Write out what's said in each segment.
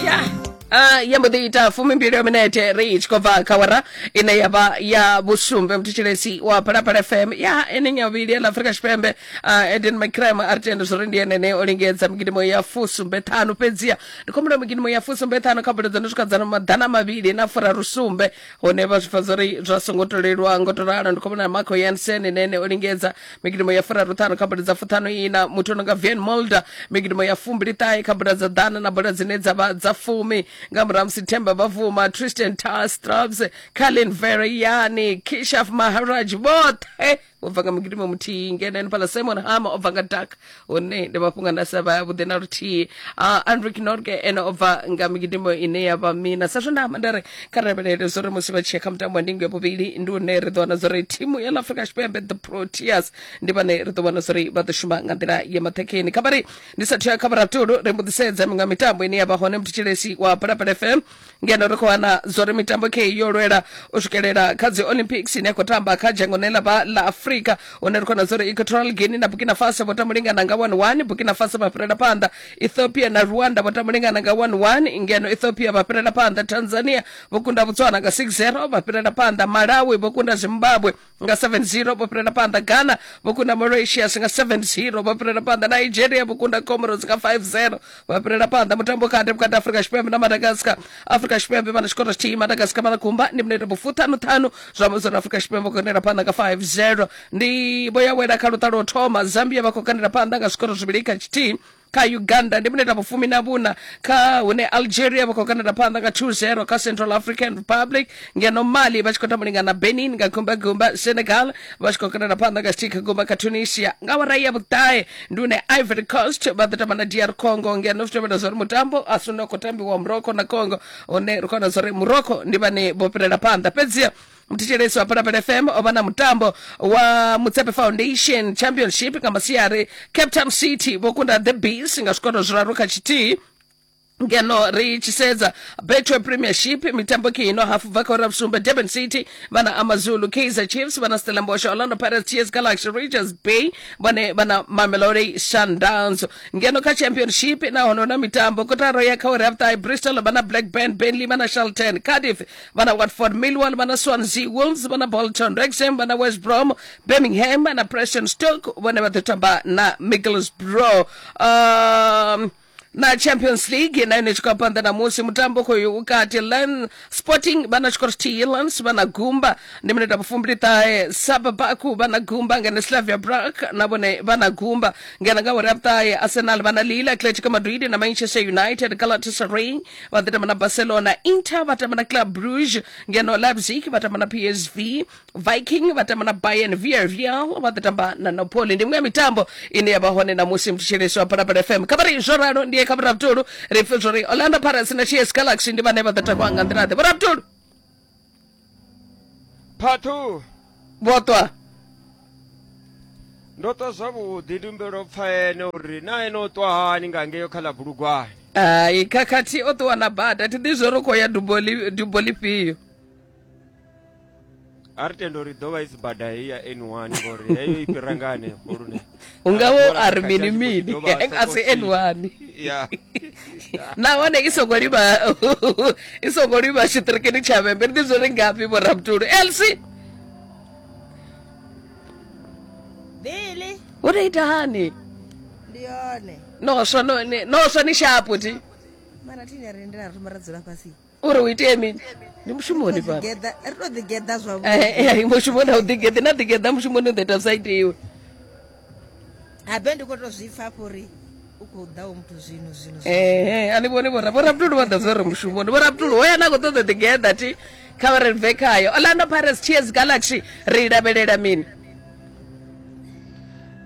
ya Uh, ya mbo ḓi ita fumimbili ya minete ri tshi khou bva kha wara ine ya vha ya vhusumbe muthetshelesi wa phalaphala fm ya ene nyavhili ya la afrika tshipembe uh, eden mcram a ri tende zwo ri ndi enene o lingedza migidimo ya fusumbe ṱhanu fhedziha ndi khombola migidimo ya fusumbe ṱhanu kha bodo dza no swika dza maḓana mavhili na furarusumbe hone vha zwi pfa zwo ri zwa songo to leluwa ngo to ralo ndi khou vhona marco yansen ene ene o lingedza migidumo ya furaruṱhanu kha bola dza fuṱhanu ina muthu ono nga vian molder migidumo ya fumbili ṱahe kha bola dza ḓana na bola dzine dza vha dza fumi nga murahu musi themba bavuma tristan tar straps carlin vereyani kishaf maharaj vhoṱhe obva nga mugidimo muthihi ngeno ene pala simon hama obva nga dak hune ndi mafhungo a ndasa vha vhuḓi na luthihi uh, andrik norge ene obva nga migidimo ine ya vha mina sa zwe nda amba ndari kha lavhelele zwo ri musi vha tshi ya kha mutambo wa ndingo ya vhuvhili ndi une ri ḓo wana zwo ri thimu ya ḽa afrika tshipembe the proteas ndi vhane ri ḓo vhona zwo ri vha ḓo shuma nga nḓila ya maṱhekheni kha vhari ndi sathu ya kha vhuratulu ri mbuḓisedza miṅwe ya mitambo ine ya vha hone mutshitshilesi wa balapala fm ngeno ri khou wana zwori mitambo kheyi yo lwela u swikelela kha dzi olympics ine ya khou tamba kha dzhango ne ḽa vha ḽa afrika hune ri khona zwori equatorial guinea na burkina faso vho tamulingana nga 11 burkina faso vha fhirela phanḓa ethiopia na rwanda vho tamulingana nga 11 ngeno ethiopia vha fhirela phanḓa tanzania vho kunda botswana nga 60 vha fhirela phanḓa malawi vho kunda zimbabwe nga 7-0 vho fhirela phanḓa ghana vho kunda mauritius nga 7-0 vho fhirela phanḓa nigeria vho kunda comoros nga 5-0 vho fhirela phanḓa mutambo kati vhukati afrika tshipembe na madagascar afrika tshipembe vha na tshikoro tshithihi madagascar vha na kumba ndi minete vhufuṱhanuṱhanu zwa amba uri afrika tshipembe vho kandela phanḓa nga 5-0 ndi vho yawela kha luṱa lwo thoma zambia vha khou kandela phanḓa nga zwikoro zwivhili kha tshithihi kha uganda ndi mineta vhufumi na vhuna kha hune algeria vha khou kandela phanḓa nga 2-0 kha central african republic ngeno mali vha tshi khou tambulinga na benin nga gumbagumba senegal vha tshi khou kandela phanḓa nga stika gumba kha tunisia nga wara ya vhuṱahe ndi une ivory coast vha ḓo tamba na dr congo ngeno zwi tevhela zwa uri mutambo a si une wa khou tambiwa morocco na congo une ri khou wana zwa uri morocco ndi vhane vho fhirela phanḓa fhedziha muthetshelesi wa phalaphala fm o vha na mutambo wa mutsepe foundation championship nga masiari cape town city vho kunda the bees nga zwikono zwiraru kha tshithihi ngeno ri tshi sedza betway premiership mitambo ke ino hafu bva kha ura vhusumbe durban city vhana amazulu kaizer chiefs vhana stellenbosch orlando pirates ts galaxy rangers bay vhone vhana mamelodi sundowns ngeno kha championship nahone hu na mitambo kotaro ya kha uri ya vhuṱahe bristol vhana black band benley vhana shelton cardiff vha na watford millwall vha na swansea wolves vha na bolton rexham vha na west brom birmingham na preston stoke vhone vha ḓo tamba na micklesbrough um, na champions league na yone tshikho phanḓa na musi mutambo khoyo vhukati lan sporting vha na tshikoro tshithihi lans vha na gumba ndi minete ya vhufumbili ṱahe sababaku vha na gumba ngene slavia brak na vhone vha na gumba ngena nga uri ya vhuṱahe arsenal vha na lila atletico madrid na manchester united galatasaray vha ḓo tamba na barcelona inter vha tamba na club bruge ngeno leipzig vha tamba na psv viking vha tamba na bayern villarreal vha ḓo tamba na napoli ndi miṅwe ya mitambo ine ya vha hone namusi mthetshelesi wa phalaphala fm kha vha ri zwo ralo ndiye kha vhurabutulu ri pfe zwo ri orlando pirates na ts galaxy ndi vhane vha ḓo takuwa nga nḓila ḓe vhurabutulu part two vhotwa ndo twa zwavhuḓi ndi humbela u pfa ene uri na ene o twa hani nga ngeyo kha ḽa bulugwane hai khakhathi o ṱuwa na bada thi ḓi zwo ri khou ya dubo li- dubo lifhio a ri tenda uri ḓo vha i si bada heyi ya n one ngori heyo i fhira nga hanefho lune u nga wo a ri mini mini a si ene wani nahone i songo livha i songo livha tshiṱirikini tsha vhembe ndi zwo ri ngafhi vhoramutulu elsi wo tou ita hani noswa noswa ni shapo ti mara tine rindela ri thoma ra dzula fhasi uri u itee mini ndi mushumoni fhano ri to ḓigeḓa zwavhuḓi mushumoni a u ḓigeḓi na ḓigeḓa mushumoni u ḓo ita vhusaiti iwe habe ndi khou to zwi pfa fho uri u khou ḓaho muthu zwino zwino ehe a ni vhoni vhora vhorabutulu vha ḓa zwo ri mushumoni vhorabutulu hoya na khou ṱoḓa ḓigeḓa thi kha vha ri bve khayo orlando pirates ts galaxy ri i lavhelela mini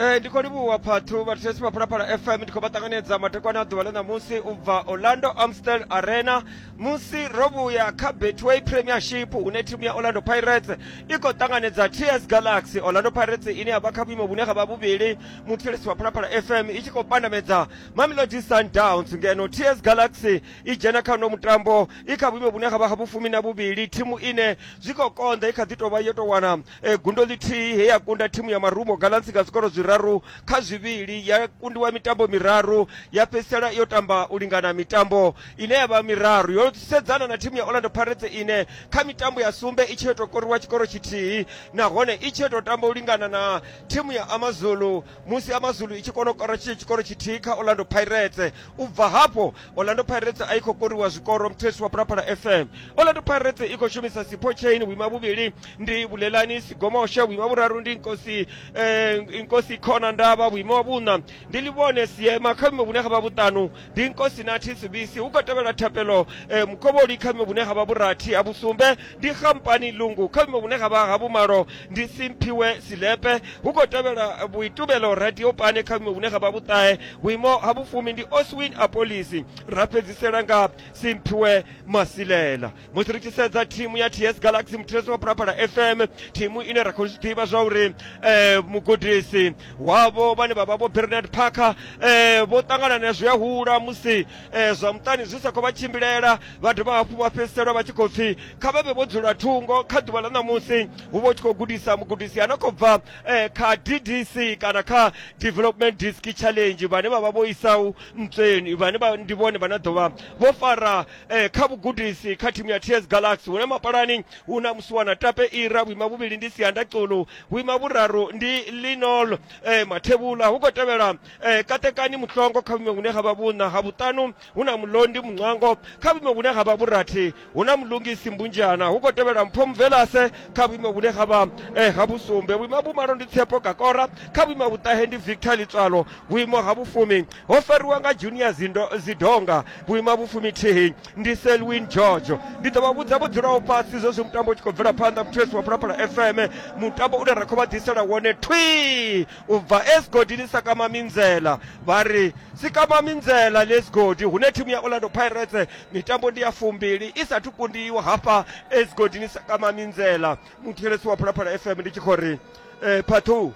Eh, ndi khou livhuwa phathu vhathetshelesi vha phalaphala fm ndi khou vha ṱanganedza madekwana a ḓuvha ḽa ṋamusi u bva orlando amstel arena musi ro vhuya kha betway premiership hune thimu ya orlando pirates i khou ṱanganedza ts galaxy orlando pirates ine ya vha kha vhuimo vhune ha vha vhuvhili muthetshelesi wa phalaphala fm i tshi khou pandamedza mamelodi sundowns ngeno ts galaxy i dzhena kha uno mutambo i kha vhuimo vhune ha vha ha vhufumi na vhuvhili thimu ine zwi khou konḓa i kha ḓi tou vha yo tou wana e, gundo ḽithihi he ya kunda thimu ya marumo galansi nga zwikoro zwiraru kha zwivhili ya kundiwa mitambo miraru ya fhedzisela yo tamba u lingana mitambo ine ya vha miraru yo sedzana na thimu ya orlando pirates ine kha mitambo ya sumbe i tshi yo tou koriwa tshikoro tshithihi nahone i tshi yo tou tamba u lingana na thimu ya amazulu musi amazulu i tshi kona u kora tshikoro tshithihi kha orlando pirates u bva hafho orlando pirates a i khou koriwa zwikoro mthesi wa pulapala fm orlando pirates i khou shumisa sipho chain vhuima vhuvhili ndi bulelani sigomoshe vhuima vhuraru ndi nkosi eh, nkosi khona ndavha vhuima wa vhuṋa ndi livhone siema kha vhuimo vhune ha vha vhuṱanu ndi nkosi nathi sibisi hu khou tevhela thapelo eh, mukovholi kha vhuimo vhune ha vha vhurathi ha vhusumbe ndi khamphani lungu kha vhuimo vhune ha vha ha vhumalo ndi simphiwe silepe hu khou tevhela vhuitumelo radio pane kha vhuimo vhune ha vha vhuṱahe vhuimo ha vhufumi ndi oswin apolisi ra fhedzisela nga simphiwe masilela musi ri tshi sedza thimu ya ts galaxy muthireso wa phalaphala fm thimu ine ra khou zwi ḓivha zwa uri um eh, mugudisi wavho vhane vha vha vho bernard parker um eh, vho ṱangana na zwi a hula musi eh, zwa muṱani zwi sa khou vha tshimbilela vha dovha hafhu vha fhedzisela vha tshi khou pfhi kha vha vhe vho dzula thungo kha ḓuvha ḽa ṋamusi hu vha hu tshi khou gudisa mugudisi a no khou bva eh, kha ddc kana kha development disk challenge vhane vha vha vho isau ntsweni vhane vha ndi vhone vhane ḓo vha vho fara eh, kha vhugudisi kha thimu ya ts galaxy hune mapalani hu na musiwana tape ira vhuima vhuvhili ndi sianda xulu vhuima vhuraru ndi linol eh, mathevhula hu khou tevhela e katekani muṱongo kha vhume vhune ha vha vhuṋa ha vhuṱanu hu na mulondi muṅwango kha vhume vhune ha vha vhurathi hu na mulungisi mbunjana hu khou tevhela mpho mvelase kha vhuime vhune ha vha e ha vhusumbe vhuima vhumalo ndi tshepo kakora kha vhuima vhuṱahe ndi victor litswalo vhuimo ha vhufumi ho fariwa nga junior zindo zidonga vhuima vhufumi thihi ndi selwin george ndi ḓo vha vhudza vho dzulaho fhasi zwezwi mutambo u tshi khou bvela phanḓa muthu yesu wa phalaphala fm mutambo une ra khou vha ḓisela wone thwi u bva e zwigodini sa kama minzela vha ri si kama minzela ḽe zwigodi hune thimu ya orlando pirates mitambo ndi ya fumbili i sathu kundiwa hafha e zwigodini sa kama minzela muthetshelesi wa phalaphala fm ndi tshi khou ri eh, phathu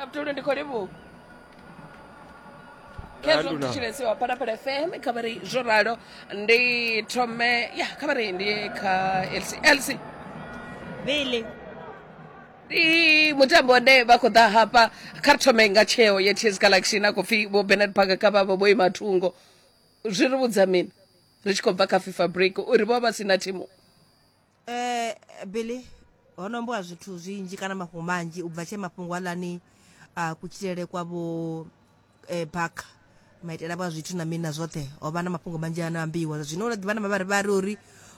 Abdul ndi khou livhuwa khezwo Anduna. mthetshelesi wa phalaphala fm kha vha ri zwo ralo ndi thome ya kha vha ri ndi kha lc lc Billy. ndi mutambo une vha khou ḓa hafha kha ri thome nga tsheo ya ts galaxy na khou pfi vho benard parker kha vhavho vho ima thungo zwi ri vhudza mini ri tshi khou bva kha fifa break uri vho vha vha si na thimu eh billy ho no ambiwa zwithu zwinzhi kana mafhungo manzhi u bva tshee mafhungo aḽani a kutshilele kwa vho eh, baka maitele avho a zwithu na mini na zwoṱhe ho vha na mafhungo manzhi ano ambiwa zwa zwino ula ḓivha na mavharivhari uri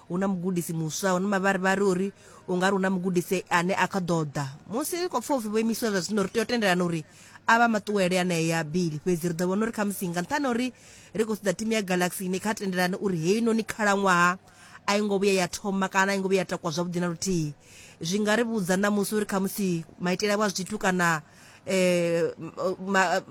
hu na mugudisi muswa hu na mavharivhari uri u nga ri hu na mugudisi ane a kha ḓo ḓa musi ri khou pfa upfi vho imisiwa zwa zwino ri tea u tendelana uri a vha maṱuwele anea bili fhedzi ri ḓo vhona uri khamusi nga nṱhani ha uri ri khou ṱoḓa timu ya galaxy ni kha tendelane uri heinoni khalaṅwaha a i ngo vhuya ya thoma kana a i ngo vhuya ya takwa zwavhuḓi na luthihi zwi nga ri vhudza ṋamusi uri khamusi maitele avho a zwithu kana eh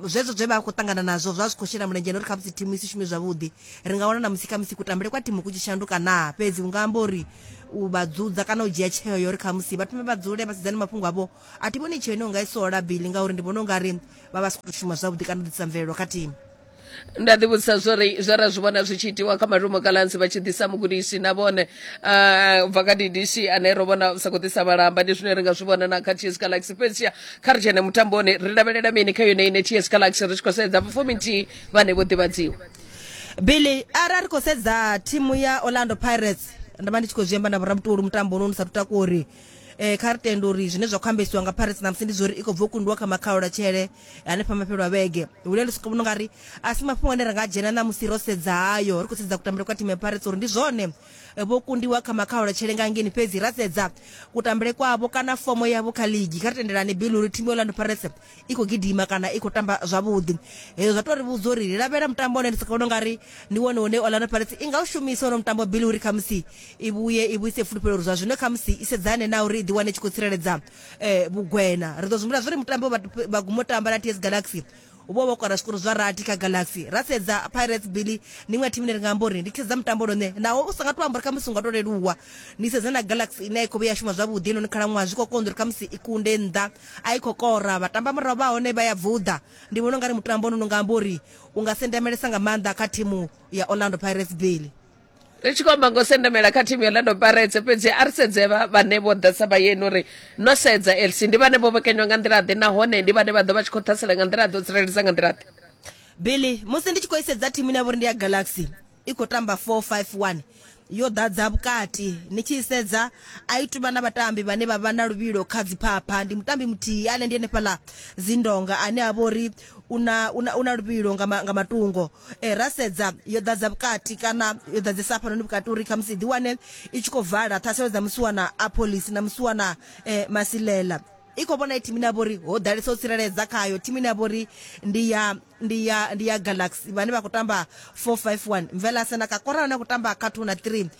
zwezwo zwe vha khou ṱangana nazwo zwa zwi khou shela mulenzhe uri kha musi thimu i si shume zwavhuḓi ri nga wana na musi kha musi kutambele kwa thimu ku tshi shanduka naa fhedzi u nga amba uri u vha dzudza kana u dzhia tsheo ya uri kha musi vha thome vha dzule vha sedzane mafhungo avho a thi vhoni tsheo ine u nga i sola bili ngauri ndi vhona u nga ri vha vha si khou shuma zwavhuḓi kana u ḓisa mvelelo kha thimu nda ḓi vhudzisa zwori zwe ra zwi vhona zwi tshi itiwa kha malumo kalansi vha tshi ḓisa mugudisi na vhone ah, bva kha ddc ane ro vhona sa khou ḓisa vhalamba ndi zwine ri nga zwi vhona na kha ts galaxy fhedzia kha ri dzhene mutamboni ri lavhelela mini kha yone ine ts galaxy ri tshi khou sedza vhafumi nthihi vhane vho ḓivhadziwa billy arali ri khou sedza thimu ya orlando pirates nda vha ndi tshi khou zwi amba na vhorabutoli mutambo uno ni sa tutakori um kha ri tende uri zwine zwa khou ambesiwa nga pirates namusi ndi zwa uri i khou bva u kundiwa kha makhaula tshele hanefha mafhelo a vhege hune ndi vhona unga ri a si mafhungo ane ra nga dzhena ṋamusi ro sedza hayo ri khou sedza kutambele kwa thimu ya pirates uri ndi zwone eh, vho kundiwa kha makhaula tshelengangini fhedzi ra sedza kutambele kwavho kana fomo yavho kha ligi kha ri tendelani bill uri thimu ya orlando pirates i khou gidima kana i khou tamba zwavhuḓi hezwo zwa tou ri vhudza uri ri lavhelela mutambo one ndi soko vhona unga ri ndi wone une orlando pirates i nga u shumisa ono mutambo bill uri khamusi i vhuye i vhuise fulufhelo uri zwa zwino khamusi i sedzane na uri i ḓiwane i tshi khou tsireledza eh, vhugwena ri ḓo zwi humbula zwo ri mutambo vha guma u tamba na ts galaxy u vho vho kora zwikoro zwa rathi kha galaxy ra sedza pirates billy ndi iṅwe thimu ine ri nga amba uri ndi sedza mutambo lone naho u sa nga to amba uri khamusi u nga to leluwa ni sedza na galaxy ine a i khou vhuya shuma zwavhuḓi inoni khalaṅwaha zwi khou konḓa uri khamusi i kunde nnḓa a i khou kora vhatamba murahu vha hone vha ya vuḓa ndi vhona u nga ri mutambo ono nga amba uri u nga sendemelesa nga maanḓa kha thimu ya orlando pirates billy ri tshi khou amba ngo sendamela kha thimu ya orlando paretse fhedzi a ri sedze vhane vho ḓesa vhayeni uri no sedza lc ndi vhane vho vhekanywa nga nḓila ḓe nahone ndi vhane vha ḓo vha tshi khou ṱhasela nga nḓila ḓo tsireledza nga nḓila ḓe billy musi ndi tshi khou isedza thimu ine ya vha uri ndi ya galaxy i khou tamba 451 yo ḓadza vhukati ni tshi isedza a i tuvha na vhatambi vhane vha vha na luvhilo kha dziphapha ndi mutambi muthihi ane ndi henefhaḽa zindonga ane a vha uri U na, u na, u na luvhilo nga, ma, nga matungo. E, ra sedza, yo ḓadza vhukati, kana yo ḓadzesa hafhanoni vhukati uri khamusi i ḓiwane i tshi khou vala ṱhaselo dza musiwana Apollis na musiwana e, Masilela. I khou vhona e thimu ine ya vha uri ho ḓalesa u tsireledza khayo, thimu ine ya vha uri ndi ya, ndi ya, ndi ya Galaxy, vhane vha khou tamba 4-5-1. Mvelase na Kakorane a khou tamba kha 2 na 3.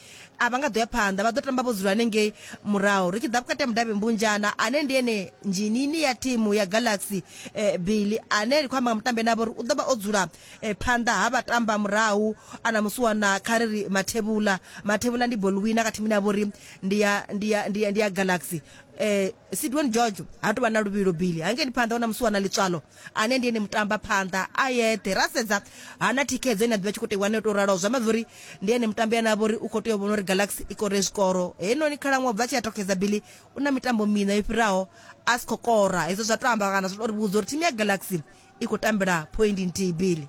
a vha nga ḓo ya phanḓa vha ḓo tamba vho dzula hanengei murahu ri tshi ḓa vhukati ha mudavhi mbunjana ane ndi ene nzhinini ya thimu ya galaxy eh, billy ane ri khou amba nga mutambi ane avha uri u ḓo vha o dzula eh, phanḓa ha vha tamba murahu ana musiwana kha ri ri mathevhula mathevhula ndi bolwina kha thimu ine ya vha uri ndi ya- ndi ya- ndi ya- ndi ya galaxy eh sidwan george ha tou vha na luvhilo billy hangei ndi phanḓa wana musiwana ḽitswalo ane ndi ene mutambaphanḓa a yeṱhe ra sedza hana thikhedzo ine a ḓivha tshi khou tea wane tou raloho zwi amba uri ndi ene mutambi ane a vha uri u khou tea u vhona uri galaxy i kore zwikoro heinoni khalaṅwaha bva tshi a tokheza bili u na mitambo miṋa yo fhiraho a si khou kora hezwo zwa to amba kana zwa tou ri vhudza uri thimu ya galaxy i khou tambela phoindi nthihi bili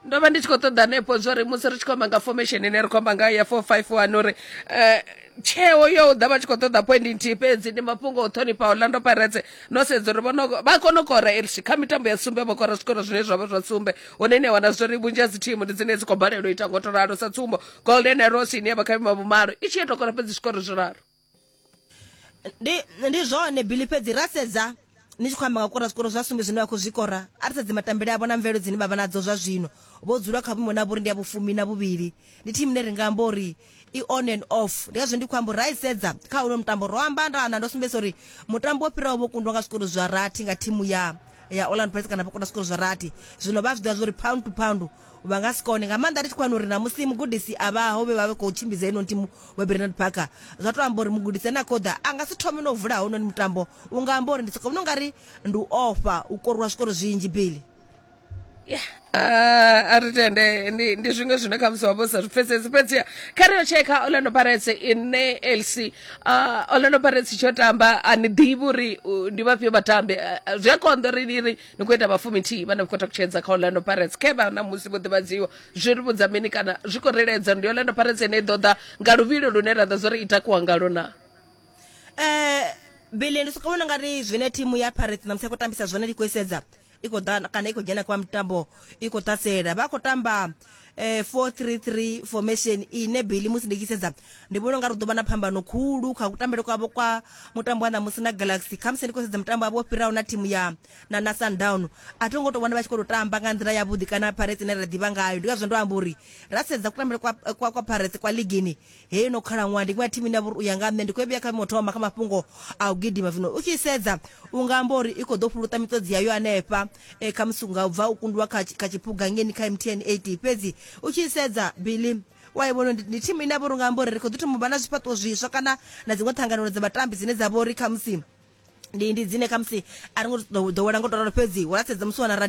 ndo vha ndi tshi khou ṱoḓa hanefho zwo ri musi ri tshi khou amba nga formation ine ri khou amba nga ya four five one uri um tsheo yo u ḓa vha tshi khou ṱoḓa point nthihi fhedzi ndi mafhungo o ṱhonifha orlando pirates no sedza uri vhono vha kona u kora elsi kha mitambo ya sumbe vho kora zwikoro zwine zwa vha zwa sumbe hune ni a wana zwori vhunzhi ha dzi thimu ndi dzine dzi khou balelwa u ita ngo to ralo sa tsumbo golden arrows ine ya vha kha vhima vhumalo i tshi ya tou kora fhedzi zwikoro zwiraru ndi ndi zwone bili fhedzi ra sedza ni tshi khou amba nga kora zwikoro zwa sumbe zwine vha khou zwikora a ri sedze matambele avho na mvelelo dzine vha vha nadzo zwa zwino vho dzula kha vhuimo na vhuri ndi ya vhufumi na vhuvhili ndi thimu ine ri nga amba uri i on and off ndi ngazwo ndi khou amba uri ra i sedza kha huno mutambo ro amba nda na ndo sumbedzisa uri mutambo wo fhiraho vho kundwa nga zwikoro zwa rathi nga thimu ya ya Orlando Pirates kana vha kunda zwikoro zwa rathi zwino vha zwi ḓivha zwori pound to pound vha nga si kone nga maanḓa ri tshi khou wana uri na musi mugudisi a vhaho vhe vha vhe khou tshimbidza ino thimu vha bernard parker zwa tou amba uri mugudisi ane a khou ḓa a nga si thome no vula hononi mutambo u nga amba uri ndi sokovhona u nga ri ndi u ofha u koriwa zwikoro zwinzhi bili Ah, a ri tende ndi ndi zwiṅwe zwine khamusi wa vha u sa zwi pfesesi fhedziha kha ri yo tshekha orlando pirates ine lc uh, orlando pirates tsho tamba a ni ḓivhi uri uh, ndi vhafhio vhatambi uh, zwi a konḓa uri ni ri ni khou ita vhafumi thihi vhane vha khou takutshedza kha orlando pirates khe vha na musi vho ḓivhadziwa zwi ri vhudza mini kana zwi khou reledza ndi orlando pirates ine i ḓo ḓa nga luvhilo lune ra ḓa zwo ri i takuwa ngalo na eh bele ndi sokou vhona nga ri zwine thimu ya pirates na musi khou tambisa zwone ndi khou isedza i khou ḓa kana i khou dzhena kwa mitambo i khou ṱhasela vha khou tamba eh, 433 formation ine billy musi ndi tshi sedza ndi vhona unga ri ḓo vha na phambano khulu kha kutambele kwavho kwa mutambo wa ṋamusi na galaxy khamusi ndi khou sedza mutambo wavho wo fhiraho na thimu ya na, na sundown a thi ngo tou vhona vha tshi khou tou tamba nga nḓila yavhuḓi kana pirates ine ra ḓivha ngayo ndi ngazwo ndo amba uri ra sedza kutambele kwa, kwa, kwa pirates kwa ligini heyo no khalaṅwaha ndi ngadthi mina vhuri u ya nga nṋe ndi khou vhuya kha vhimo thoma kha mafhungo a u gidima zwino u tshi sedza u nga amba uri i khou ḓo fhuluta miṱodzi yayo anefha e, kha musi nga u bva u kundiwa kha kha tshiphuga ngeni kha mtn 8 fhedzi u tshi sedza billy wa i vhona ndi thimu ine a vha uri nga amba uri ri khou ḓi thoma u vha na zwifhaṱuwo zwiswa kana na dziṅwe ṱhanganelo dza vhatambi dzine dza vha uri khamusi ndi ndi dzine khamusi a ri ngo ḓowela ngo to ralo fhedzi wa sedza musi wana radio